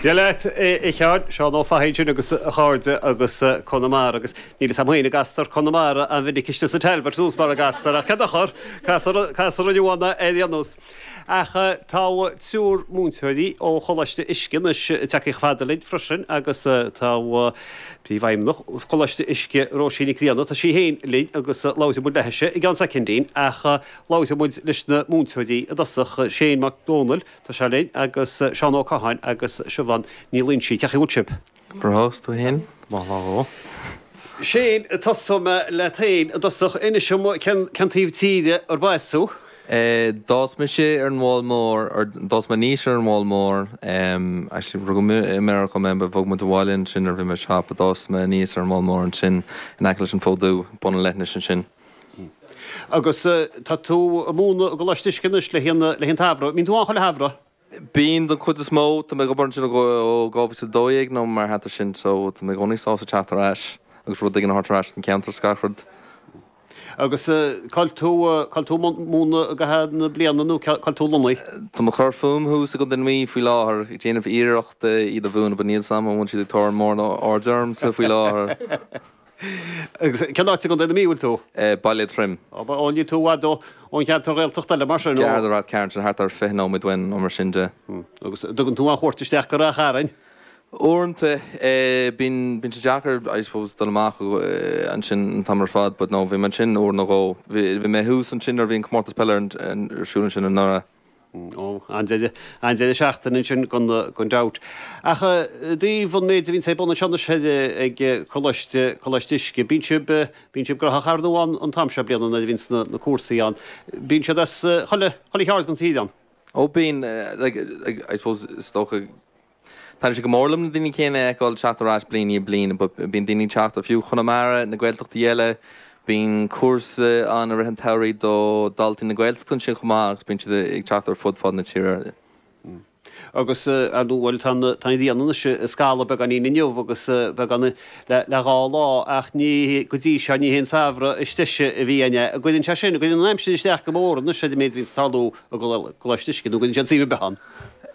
Dia leat, a Sheáin. Seán Ó Fathaigh ansin agus a chairde as Conamara. Agus níl a fhios a'm fhéin, an gcastar Conamara an-mhinic istigh sa Talbot in Iorras, mara gcastar, ach cén dochar, castar ann iad amanna ar aon nós. Ach tá triúr múinteoirí ó Choláiste Uisce anois ag teacht ag labhairt linn freisin agus tá Príomhfheidhmeannach Choláiste Uisce, Róisín Nic Grianna, tá sí fhéin linn agus labhróidh muid léithise i gceann soicindín ach Labhróidh muid leis na múinteoirí i dtosach, Shane Mac Dónaill, Tá sé linn, agus Seán Ó Catháin agus Siobhán Ní Loingsigh. Cén chaoi a bhfuil sibh? Bhur host tú fhéin? Maith lá dhó. Shane, Tosóidh mé leat fhéin i dtosach. Inis liom cén taobh tíre arb as tú? D'fhás mise ar an bPoll Mór, or d'fhás mé aníos ar an bPoll Mór. Actually rugadh i Meiriceá mé, but bhog muid abhaile ansin nuair a bhí mé seacht, but d'fhás mé aníos ar an bPoll Mór ansin in aice leis an Fód Dubh, bun an leithinis ansin. Agus tá tú ag múineadh i gColáiste Uisce anois le linn an tsamhraidh. An mbíonn tú ann chuile shamhradh? Bíonn, don chuid is mó. Tá mé ag obair ansin ó 2012 nó mar a hata sin so tá mé i gcónaí sásta teacht ar ais agus rud éigin a thabhairt ar ais don cheantar is gach rud. Agus cá bhfuil tú ag múineadh i gcaitheamh na bliana nó cá bhfuil tú lonnaithe? Tá mé ag cur fúm thuas i gContae na Mí faoi láthair, ag déanamh iarracht iad a mhúineadh but níl a fhios a'm an bhfuil siad ag tabhairt mórán aird orm faoi láthair. Agus cén áit i gContae na Mí a bhfuil tú? Baile Átha Troim. Ó, níl tú i bhfad ón cheantar Ghaeltachta eile mar sin? Sea, tá Ráth Chairn, sin thart ar fiche nóiméad uainn nó mar sin de. Agus an dtugann tú aon chuairt isteach go Ráth Chairn? Uaireanta, bíonn, bíonn sé deacair I suppose dul amach ansin an t-am ar fad but no, bhí mé ansin uair nó dhó. Bhí mé thuas ansin nuair a bhí an Comórtas Peile ar siúl ansin anuraidh. Ó, an-deireadh, an-deireadh seachtaine ansin gan gan dabht. Ach i dtaobh an méid a bhíonns ag bun anseo anois ag Coláiste, Coláiste Uisce, bíonn sibh, bíonn sibh graitheach ar ndú ann an t-am seo bliana nuair a bhíonns na, na cúrsaí ann. Bíonn siad as chuile, chuile cheard den tír ann. Ó bíonn, like, I suppose is dócha, Taitníonn sé go mór liom na daoine céanna a fheiceáil ag teacht ar ais bliain i ndiaidh bliana. Bíonn daoine ag teacht ó fiú Chonamara, na Gaeltachtaí eile. Bíonn cúrsa ann i rith an tsamhraidh do dhaltaí na Gaeltachta ansin chomh maith agus bíonn siad ag teacht ar fud fad na tíre. Agus, bhuel, tá an ghrian anois ag scalladh beagáinín inniu agus beagáinín le dhá lá ach ní, go dtí seo, ní haon samhradh is deise a bhí ann. An gcuireann sé sin, an gcuireann an aimsir isteach go mór anois ar an méid a bhíonn ag tarlú i gColáiste Uisce nó an gcuireann siad suim ar bith ann.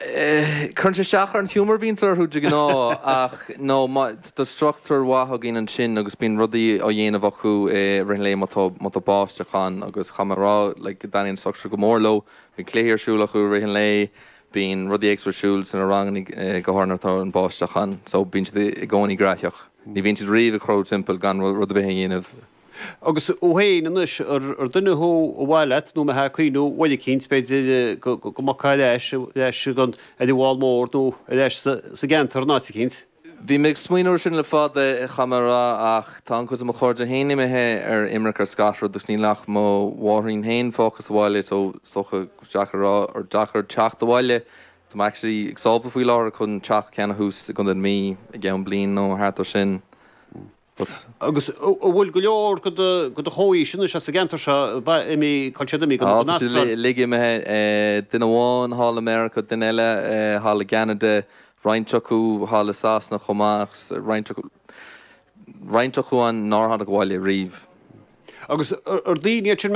Cuireann sé isteach ar an humour a bhíonns orthu de ghnáth ach no tá structúr mhaith againn ansin agus bíonn rudaí á dhéanamh acu i rith an lae má tá má tá báisteach ann agus caithfidh mé a rá like go dtaitníonn an structúr go mór leo. Bíonn cluichí ar siúl acu i rith an lae, bíonn rudaí éagsúla ar siúl sna ranganna go háirithe nuair atá an báisteach ann so bíonn siad i gcónaí graitheach. Ní bhíonn siad riamh ag crochadh timpeall gan rud ar bith a dhéanamh. Agus thú féin anois, ar duine thú ar mhaith leat nó a mbeifeá ag cuimhniú uair eicínt, b'fhéidir, go ngabhfá ar ais, ar ais go dtí an bhFál Mór nó ar ais sa gceantar in áit eicínt? Bhí mé ag smaoineamh ar sin le fada, caithfidh mé a rá, ach tá an-chuid de mo chairde féin imithe ar imirce ar scáth ar bith agus níl ach mo mháithrín féin fágtha sa bhaile, so is dócha gur deacair a rá, gur deacair teacht abhaile. Tá mé actually ag sábháil faoi láthair chun teach a cheannach thuas i gContae na Mí i gceann bliain nó thart air sin. But. Agus an bhfuil go leor de do, de do chomhaois anois as an gceantar seo? Imithe, tá siad imithe, an Astráil. Á, tá siad uilig imithe. Duine amháin thall i Meiriceá, duine eile thall i gCeanada, roinnt acu thall i Sasana chomh maith agus roinnt acu, roinnt acu ann nár tháinig abhaile riamh. Agus ar daoine iad sin?